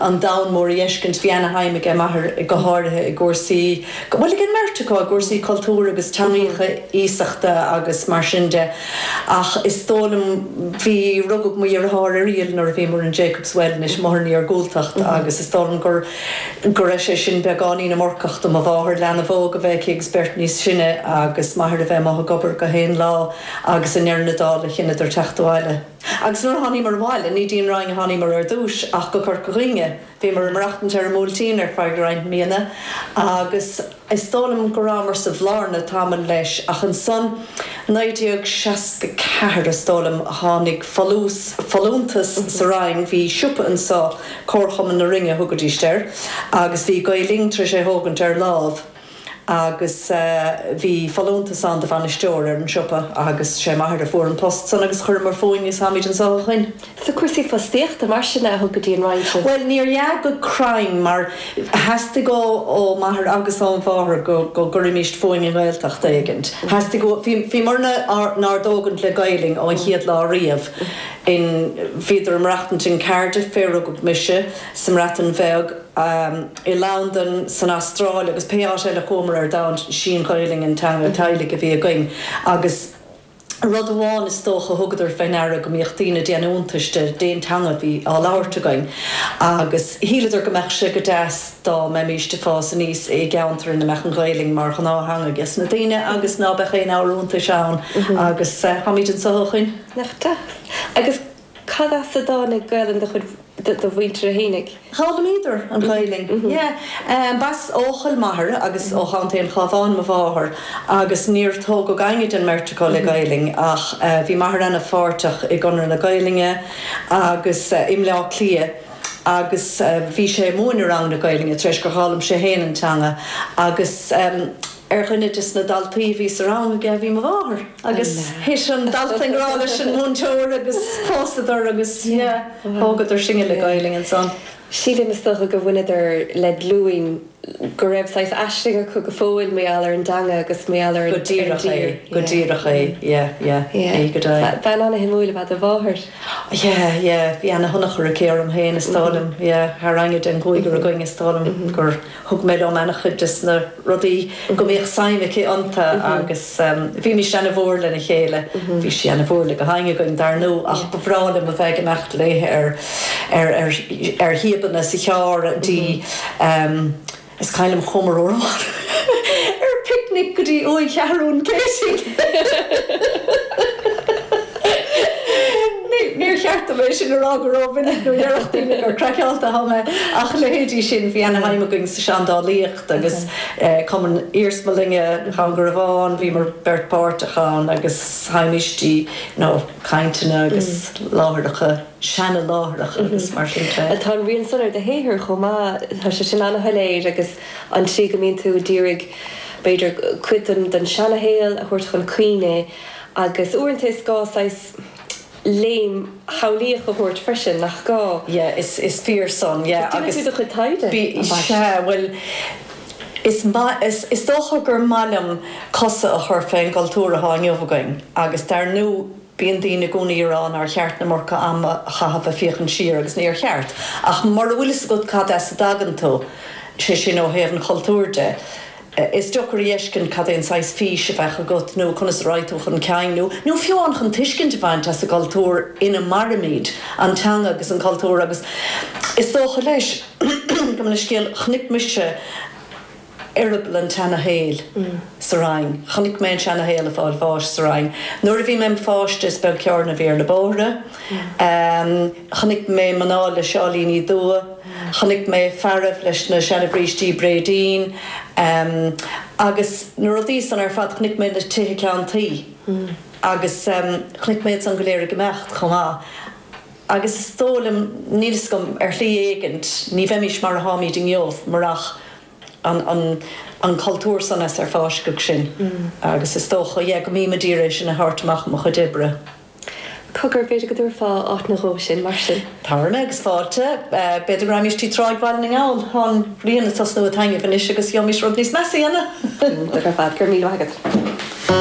an domhan mór a dh'fheiscint. Bhí ana-shuim aige m'athair go háirithe i gcúrsaí, bhuel ag an mbeirt acu, i gcúrsaí cultúr agus teangaíocha iasachta agus mar sin de. Ach is dóigh liom bhí, rugadh mo dheartháir Irial nuair a bhíomar in Jacobs Well anois, b'fhéidir an iargúltacht agus is dóigh liom gur, go raibh sé sin beagáinín iomarcach do mo mháthair, leanbh óg a bheith aici agus beirt níos sine agus m'athair a bheith amuigh ag obair gach aon lá agus i ndeireadh na dála chinneadar teacht abhaile. Agus nuair a tháiníomar abhaile, ní dtí'n Rinn a tháiníomar ar dtúis ach go Corca Dhuibhne. Bhíomar ag maireachtaint ar an mBuailtín ar feadh roinnt míonna agus is dóigh liom go rabhamar sa Bhlarna tamall leis ach ansan, 1964 is dóigh liom, tháinig folús, folúntas sa Rinn, bhí siopa anso, Comharchumann na Rinne a thugaidís air, agus bhí Gael Linn tar éis é thógaint ar lámh. agus bhí folúntas ann do bhainisteoir ar an siopa agus sé m'athair a fuair an post san agus chuireamar fúinn is tháimíd anso ó shoin. So cúrsaí fostaíochta mar sin a thug go dtí an Rinn sibh? Bhuel níorbh ea go cruinn mar theastaigh ó m'athair agus óm' mháthair go gcuirimíst fúinn i nGaeltacht éigin. Theastaigh uathu, bhí, bhí muid inár dtógaint le Gaelainn ón chéad lá riamh in, bhíodar ag maireachtaint in Cardiff fé rugadh mise, sa mBreatain Bheag, i Londain, san Astráil agus pé áit eile a chuamar ar domhan, sí an Ghaelainn an teanga teaghlaigh a bhí againn agus rud amháin is dócha, thugadar fé ndeara go mbíodh daoine ag déanamh iontais de, dén teanga a bhí á labhairt againn agus shíleadar go mbeadh sé go deas dá mbeimíst ag fás aníos i gceantar ina mbeadh an Ghaelainn mar ghnáth-theanga ages na daoine agus ná beadh aon abhar iontais ann agus táimíd anso ó shoin. Nach deas agus. Cad as a dtáinig Gaolainn do mhuintire fhéinig? Roghnaíodar an Ghaolainn, yeah. B'as Eochaill m'athair agus ó Chontae an Chábháin mo mháthair agus níor tógadh éinne den mbeirt acu le Gaolainn ach bhí m'athair ana pháirteach i gConradh na Gaolainne agus i mBleá Cliath agus bhí sé ag múineadh ranganna Gaolainne tar éis gur dh'fhoghlaim sé féin an teanga agus Ar dhuine des na daltaí a bhí sa rang aige a bhí mo mháthair agus thit an dalta i ngrá leis an múinteoir agus phósadar agus yeah, thógadar sinne le Gaolainn ansan. Sílim is dócha go bhaineadar le glúin go raibh saghas aisling acu go fóill mar gheall ar an dteanga agus mar gheall ar an tír. Go díreach é, go díreach é, yeah, yeah, yeah, go deimhin. Bean ana-shuimiúil ab ea do mháthair. Yeah, yeah, bhí ana-thionchar aici orm féin is dóigh liom, yeah, thar éinne den gcúigear againn is dóigh liom gur. thug mé liom ana chuid des na rudaí go mbíodh suim aici ionta agus bhímís ana mhór le na chéile. Bhí sí ana mhór le gach éinne againn dar ndú ach ba bhreá liom a bheith ag imeacht léi ar shíobanna sa charr go dtí, is cuimhin liom chuamar lá ar picnic go dtí uaigh Sheathrún Céitinn! Níor cheart dom é sin a rá go ró-mhinic nó déarfadh daoine gur craiceáilte athá mé ach leithéidí sin, bhí ana shuim againn sa seandálaíocht agus cumann iarsmalainne Dhún Garbhán, bhíomar beirt páirteach ann agus théimis dtí you know cainteanna agus láithreacha, seana láithreacha agus mar sin de. Tá an rian san ar do shaothar chomh maith, tá sé sin ana shoiléir agus an tslí go mbíonn tú a d'iarraidh b'fhéidir cuid den seana shaol a thabhairt chun cuimhne agus uaireanta is gá saghas, léim shamhlaíoch a thabhairt freisin, nach gá? Yeah, is is fíor san, yeah, agus. Déanann tú do chuid taighde? Bí, sea, bhuel, is maith, is, is dócha gur maith liom cosa a chur fén gcultúr atá inniu againn agus dar ndú bíonn daoine i gcónaí ag rá nár cheart an iomarca ama a chaitheamh ag féachaint siar agus níor cheart ach mura bhfuil fhios agat cad as a dtagann tú, sé sin ó thaobh an chultúir de. Is deocair a dh'fheiscint cad é an saghas fís a bheadh agat nó conas a raghadh tú chun cinn nó nó fiú amháin chun tuiscint a bhaint as an gcultúr ina mairimid, an teanga agus an cultúr agus is dócha leis go mbeidh scéal Chonaic mise eireaball an tseana-shaoil sa Rinn, chonaic mé an seana-shaol ag fáil bháis sa Rinn. Nuair a bhí mé im' pháiste is beag carr a bhí ar na bóithre. Chonaic mé mná le seáilíní dubha, chonaic mé fearaibh leis na seana-bhrístí bréidín agus na rudaí san ar fad. Chonaic mé na tithe ceann tuí agus chonaic mé iad san go léir ag imeacht chomh maith. Agus is dóigh liom, níl fhios agam, ar shlí éigin ní bheimís mar a táimíd inniu marach an cultúr san as ar fáisceadh sinn agus is dócha, yeah, go mbím a d'iarraidh é sin a thabhairt amach i mo chuid oibre. Cogar, b'fhéidir go dtabharfá áit nó dhó sinn mar sin? Tabharfaidh mé agus fáilte. B'fhéidir go raghaimís dtí Tráigh Bhaile na nGall. Tá an ghrian ag tosnú ag taitneamh anois agus gheobhaimís rud níos measa a dhéanamh. Go raibh maith agat.